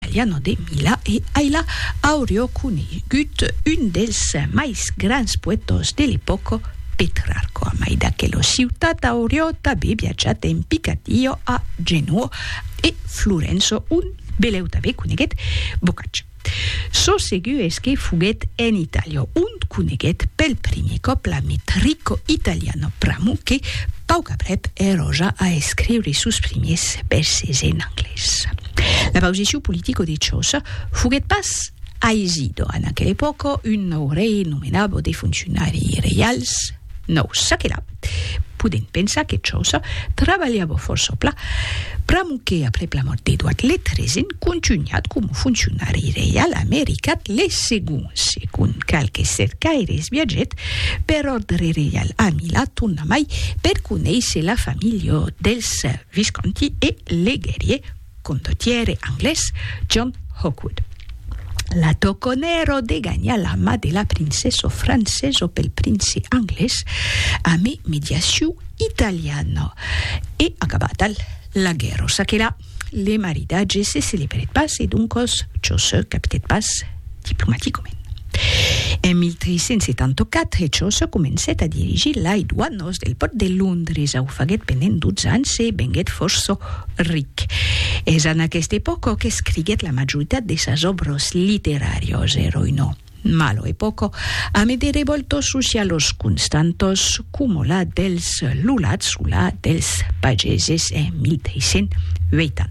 Italiano de Milà e ailà aurió conegut un dels mais grans poètos de l'epòca, Petrarco. A mai d'aquela ciutat aurió tabé viatjat en Picadillo a Genoa e Florença ont beleu tabé coneguet Boccaccio. Çò segur es que foguet en Itàlia ont coneguet pel primier còp la Metrico Italiano, pr'amor que pauc aprèp èrò ja a escriure sos primiers vèrses en anglés. La pausiciu politico de Ciosa foguèt pas aisidor en aquela epòca, un nòu rei nomenava de fonciunari reials nòus. Çaquelà, podèm pensar que Ciosa trabalhava fòrça plan, pr'amor que aprèp la mòrt d'Eduard le Tresen contunhat coma fonciunari reial amé Ricard le Segon. Segon qualques cercaires viatgèt per òrdre reial a Milà tornamai per conéisser la familha dels Visconti e legèrie condottiere anglés John Hawkwood. La toconèro de ganhar la mà de la princeso franceso pel prince anglés ame mediaciu italiano e acabata la guèrro s'aquela le maridatge se celebrèt pas e doncos çò se capitèt pas diplomaticament. En 1374, Chaucer comencèt a dirigir lai doanos del pòrt de Londres, au faguèt pendent dotze ans e venguèt fòrça ric. Es en aquesta epòca qu'escriguèt la majoritat de sas òbras literàrias. Èra una mala epòca amé de revòltas socialas constantas, coma la dels lulats o la dels pageses en 1380.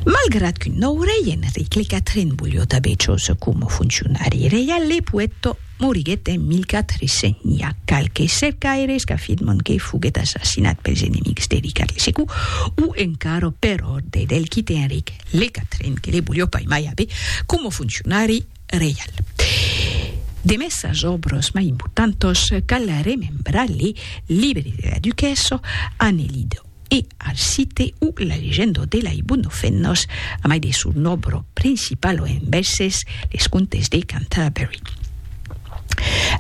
Malgrat qu'un nòu rei, Enric le Quatren, volió tanben çòs coma foncionari reial, le poèta moriguèt en 1401. Qualques cercaires qu'afirman que foguèt assassinat pels enemics de Ricard le Secu o encara per òrdre del quite Enric le Quatren que le volió pas mai aver coma foncionari reial. Demest sas òbras mai importantas cal remembrar le Libre de la duquessa, Anne-Lide. e al site o la legendo de la Ibunofennos, a mai de son òbro principalo en vèses, Les Contes de Canterbury.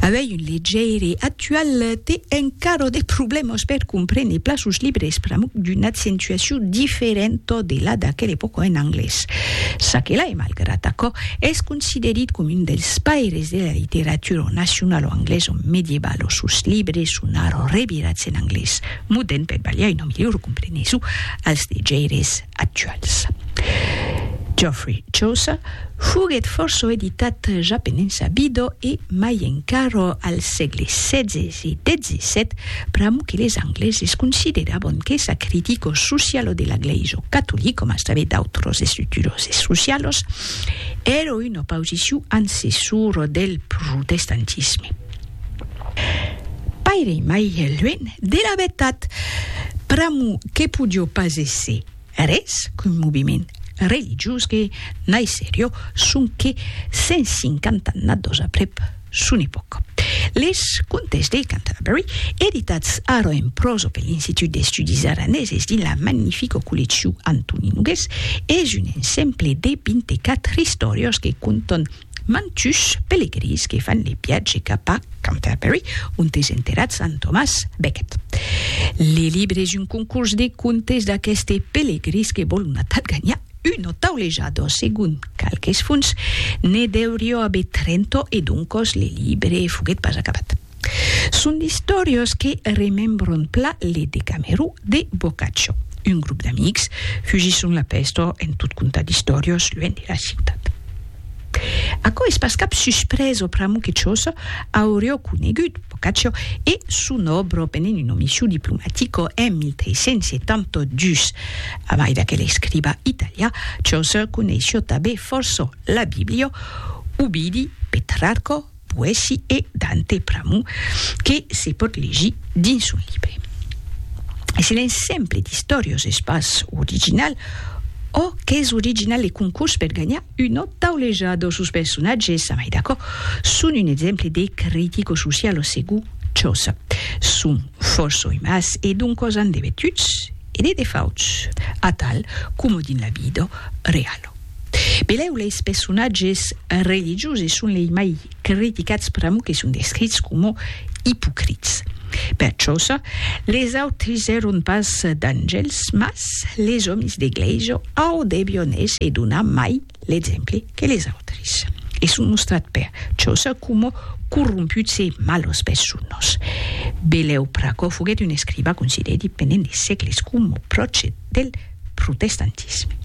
Avei un legeire actual te encaro de problèmas per comprene pla sos libres pr'amor d'una accentuacion diferenta de la d'aquela epòca en anglés. Ça que là, e malgrat aquò, es considerit com un dels paires de la literatura nacionalo anglesa medievalo, sos libres son ara revirats en anglés. muden per balhar una milhor compreneson als degeires actuals. Geoffrey Chaucer foguèt fòrça editat ja penensabido e mai encara al sègle xvi e xvii, pr'amor que les Angleses considerabon que sa critico socialo de la Glèisa catolica, coma es tanben d'autras estructuras socialas, èra una pausicion ancessora del protestantisme. Paire mai luènh de la vertat, pr'amor que podió pas èsser res qu'un moviment religiós que naisserió sonque 150 annados aprèp son epòca. Les Contes de Canterbury, editats ara en pròsa per l'Institut d'Estudis Araneses dins la magnifica colleccion Antoni Nogués, es un ensemble de 24 istòrias que contan Mantush pelegrins que fan le viatge cap a Canterbury, ont es enterrat sant Tomàs Becket. Le libre es un concurs de contes d'aqueste pelegrins que vòl una tad ganhar un o taulejador, segon qualques fonts, ne deurió aver trenta e doncos le libre foguèt pas acabat. Son d'istòrias que remembran pla le Decamerò de Boccaccio. Un grop d'amics fugisson la pèsta en tot contar d'istòrias luènh de la ciutat. Aquò es pas cap suspresa pr'amor que Chaucer auriá conegut Boccaccio e son òbra pendent una mission diplomatica en 1372. A mai d'aquel escriba italià, Chaucer coneissiá tanben fòrça la Bíblia, Ovidi, Petrarca, poèsi e Dante pr'amor que se pòt legir dins un libre. Es un exemple d'istòrios es pas original, ò qu'es original le concurs per ganhar una tauleja dò sos personatges, amai d'acò, son un exemple de critico-socialo segur, çòs son fòrça oimas e doncòs an debetuts, e de defauts, atal coma dins la vida reala. Benlèu leis personatges religioses son lei mai criticats pr'amor que son descrits coma ipocrits. Per chauça, les autres èron pas d'angèls, mas les òmes d'eglèisa au debian èsser d'una mai L'exemple que les autres e son mostrat per chausa coma corromputs e malos personas. Belèu Pracò foguèt un escriva considerit pendent de sègles coma pròche del protestantisme.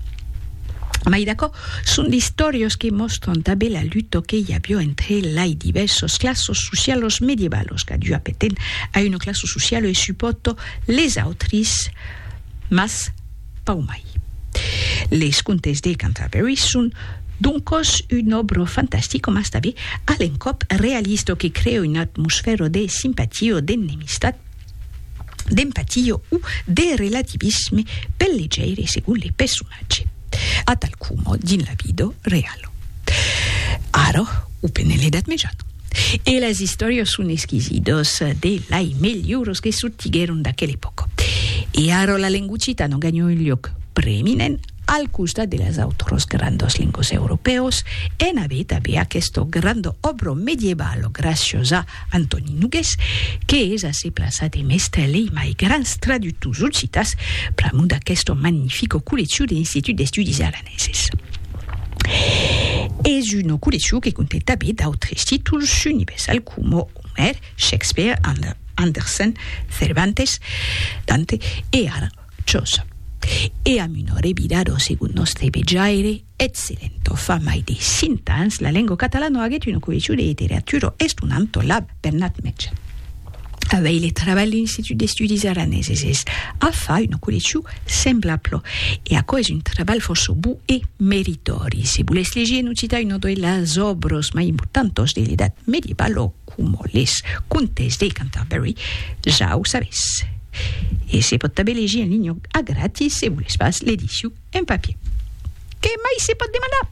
Mai d'aquò, son d'istòrias que mòstran tanben la luta que i aviá entre lai divèrsas classas socialas medievalas, qu'a dua pertèn a una classa sociala e suporta les autres, mas Pau mai. Les contes de Canterbury son doncòs un òbro fantastic coma estabe a l'encòp realista o que crea una atmosfèra de simpatia o d'ennemistat, d'empatia o de relativisme pel legeire segon le personatge, atal coma dins la vida reala. Ara, o pendent l'Edat Mejana. E las istòrias son esquisidas de lai melhors que sortiguèron d'aquela epòca. E ara la lengua occitana ganha un luòc preeminent al costat de las autras grandas lengas europèas, en aver tanben aquesta granda òbra medievala gràcias a Antòni Nogués, que es a se plaçar demest lei mai grans traductors occitans pr'amor d'aquesta magnifica colleccion de l'Institut d'Estudis Aranesi. Sis. Es una colleccion que conte tanben d'autres títols universals coma Omer, Shakespeare, Andersen, Cervantes, Dante e ara Chaucer. E amb una revirada segon nòstre vejaire, excellenta. Fa mai de cent ans, la lenga catalana aguèt una colleccion de literatura estonanta, la. Bernat Metge. A veire trabalh l'Institut d'Estudis Araneses es a far una colleccion semblabla e aquò es un trabalh fòrça bon e meritòri. Se volètz legir en occitan una de las òbras mai importantas de l'Edat Mediebala, coma Les Contes de Canterbury, ja o sabètz. E se pòt tanben legir en linha a gratis se volètz pas l'edicion un papier. Qué mai se pòt demandar?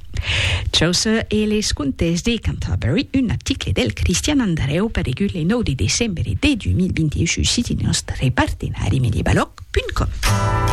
Chaucer e les contes de Canterbury, un article del Cristian Andareu paregut le 9 de decembre de 2021 sus siti nòstre partenari medievaloc.com.